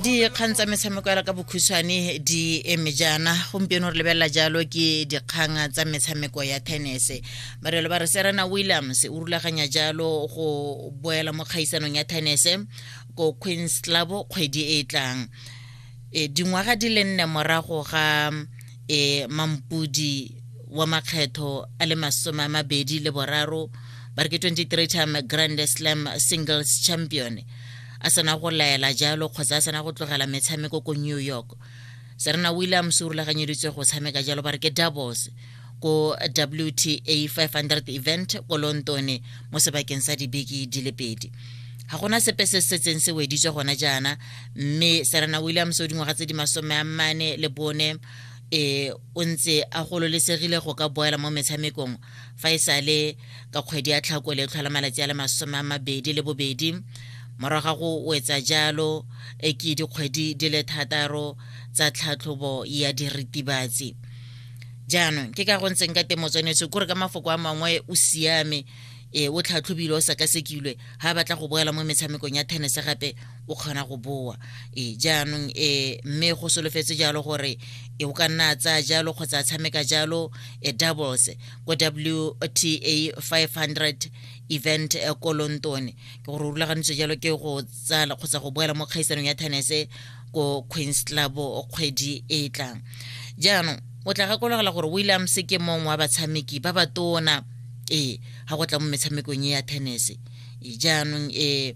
dikgang tsa metshameko ya ka bokhutshwane di eme jaana gompieno re lebelela jalo ke dikgang tsa metshameko ya tenese barelo ba re serena williams o rulaganya jalo go boela mo kgaisanong ya tenese ko queens club kgwedi e e tlang e dingwaga di le nne morago ga e mampudi wa makgetho a le masome a mabedi le boraro ba re ke 23 time grand slam singles champion a sena go laela jalo kgotsa a sena go tlogela metshameko ko new york serena williams o rulaganyeditswe go tshameka jalo ba re ke doubles ko wta 500 event ko lontone mo sebakeng sa dibeke di le pedi ga gona sepe se setseng se weditswe gona jaana mme serena williams o dingwaga tse di masome a mane le bone e o ntse a gololesegile go ka boela mo metshamekong fa e sale ka kgwedi ya tlhakole e tlhola malatsi a le masome a mabedi le bobedi morago ga go wetsa jalo e ke dikgwedi di le thataro tsa tlhatlhobo ya diritibatsi jaanong ke ka go ntseng ka teng motswanetso kore ka mafoko a mangwe o siame e o tlhatlhobile o sekasekilwe ga batla go boela mo metshamekong ya tennis gape o kgona go boa e jaanong e mme go solofetse jalo gore e o ka nna a tsaya jalo kgotsa a tshameka jalo e doubles ko wta 500 event e ko london ke gore o rulagantswe jalo ke go tsala kgotsa go boela mo kgaisanong ya tenese ko queens club kgwedi e e tlang jaanong o tla gakologela gore williams ke mongwe wa batshameki ba ba tona ee ga go tla mo metshamekong e ya tenese jaanong ee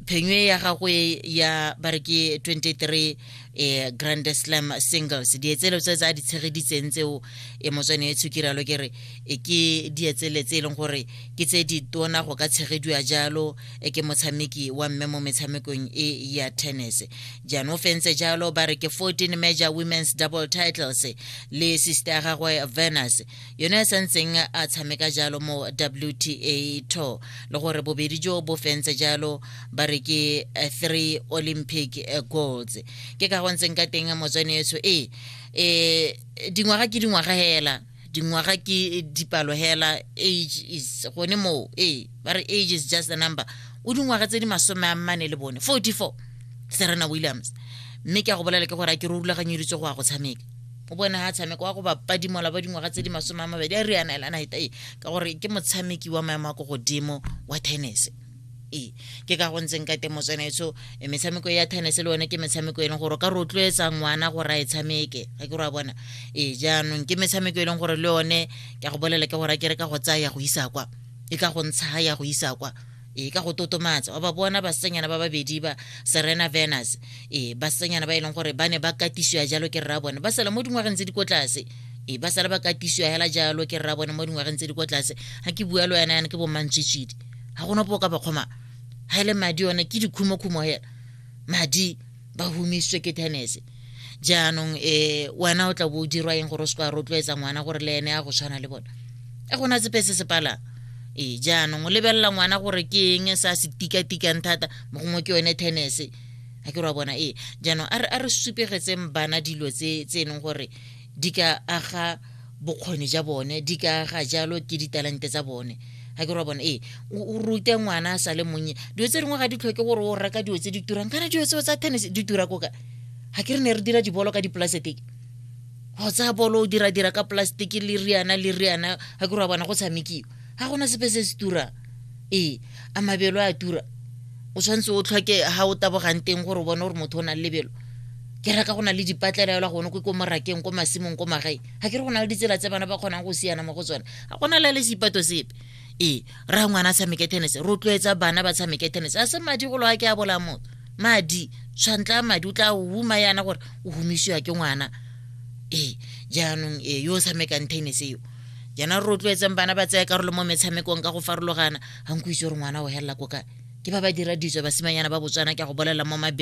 phenywe ya gagwe ya ba re ke 23 eh, grand slam singles dietselo tse tse a di tshegeditseng tseo e motswane e tshukiralo ke re e ke dietsele tse e leng gore ke tse di tona go ka tshegediwa jalo e ke motshameki wa mme mo metshamekong e ya tennis jaanong fentse jalo ba re ke 14 major women's double titles le sister ya gagwe venus yone a santseng a tshameka jalo mo wta tour le gore bobedi jo bo fentse jalo ba re ke eh, three olympic eh, golds ke ka gontseng ka teng motswane etso e eh, dingwaga ke dingwaga hela dingwaga ke dipalo hela age is gone moo ee ba re age is just a number o dingwaga tse di masome a mmane le bone 44 serena williams mme ke a go bolela ke gore a ke re o rulaganyeditswe go ya go tshameka o bone ha tshameka wa go bapadimola ba dingwaga tse di masome a mabedi a riana elana hetae ka gore ke motshameki wa maemo a ko godimo wa tennis e ke ka go ntseng ka teng motswenetso e, metshameko ya tennis le one ke metshameko e leng gore o ka rotloetsa ngwana gore a e tshameke ga ke ra bona e jaanong ke metshameko e leng gore le one ke a go bolela ke gore ke re ka go tsaya ya go isa kwa e ka go ntsha ya go isa kwa e ka go totomatsa wa ba bona basenyana ba babedi ba serena venus e basenyana ba e leng gore ba ne ba katisiwa jalo ke rra bone ba sala mo dingwageng tse di ko tlase e ba sala ba katisiwa hela jalo ke rra bone mo dingwageng tse di ko tlase ga ke bua lo yana yana ke bomantsitsidi ga gona po ka bakgoma ga e le madi one ke dikhumokhumo hela madi ba humisitswe ke tennis jaanong e wena o tla bo o dirwa eng gore o se ka rotloetsa ngwana gore le ene a go tshwana le bone a gona sepe se se palang ee jaanong o lebelela ngwana gore ke eng se a se tikatikang thata mo gongwe ke yone tennis a ke re wa bona ee jaanong a re supegetseng bana dilo tse e leng gore di ka aga bokgoni ja bone di ka aga jalo ke ditalente tsa bone ga ke re wa bone ee o rute ngwana a sa le monnye dilo tse dingwe ga di tlhoke gore o reka dilo tse di turang kana dilo tseo tsa tennis di tura koka ga ke re ne re dira dibolo ka dipolaseteke go tsaya bolo o dira-dira ka polaseteke le riana le riana ga ke re wa bona go tshamekiwa ga gona sepe se se turang ee a mabelo a tura o tshwanetse o tlhoke ga o tabogang teng gore o bone gore motho o nang lebelo ke reka go na le dipatlela yola gone ko ko morakeng ko masimong ko magae ga ke re go na le ditsela tse bana ba kgonang go siana mo go tsone ga gona la le sepato sepe ee ra ngwana a tshameke tennis rotloetsa bana ba tshameke tennis a se madi golo a ke a bola motho madi tshwantla madi o tla huma yana gore o humisiwa ke ngwana ee jaanong ee yo o tshamekang tennis eo jaanong rotloetseng bana ba tsaya karolo mo metshamekong ka go farologana ga nko itse gore ngwana o helela ko kae ke ba ba dira ditso basimanyana ba botswana ke a go bolelela mo mabelo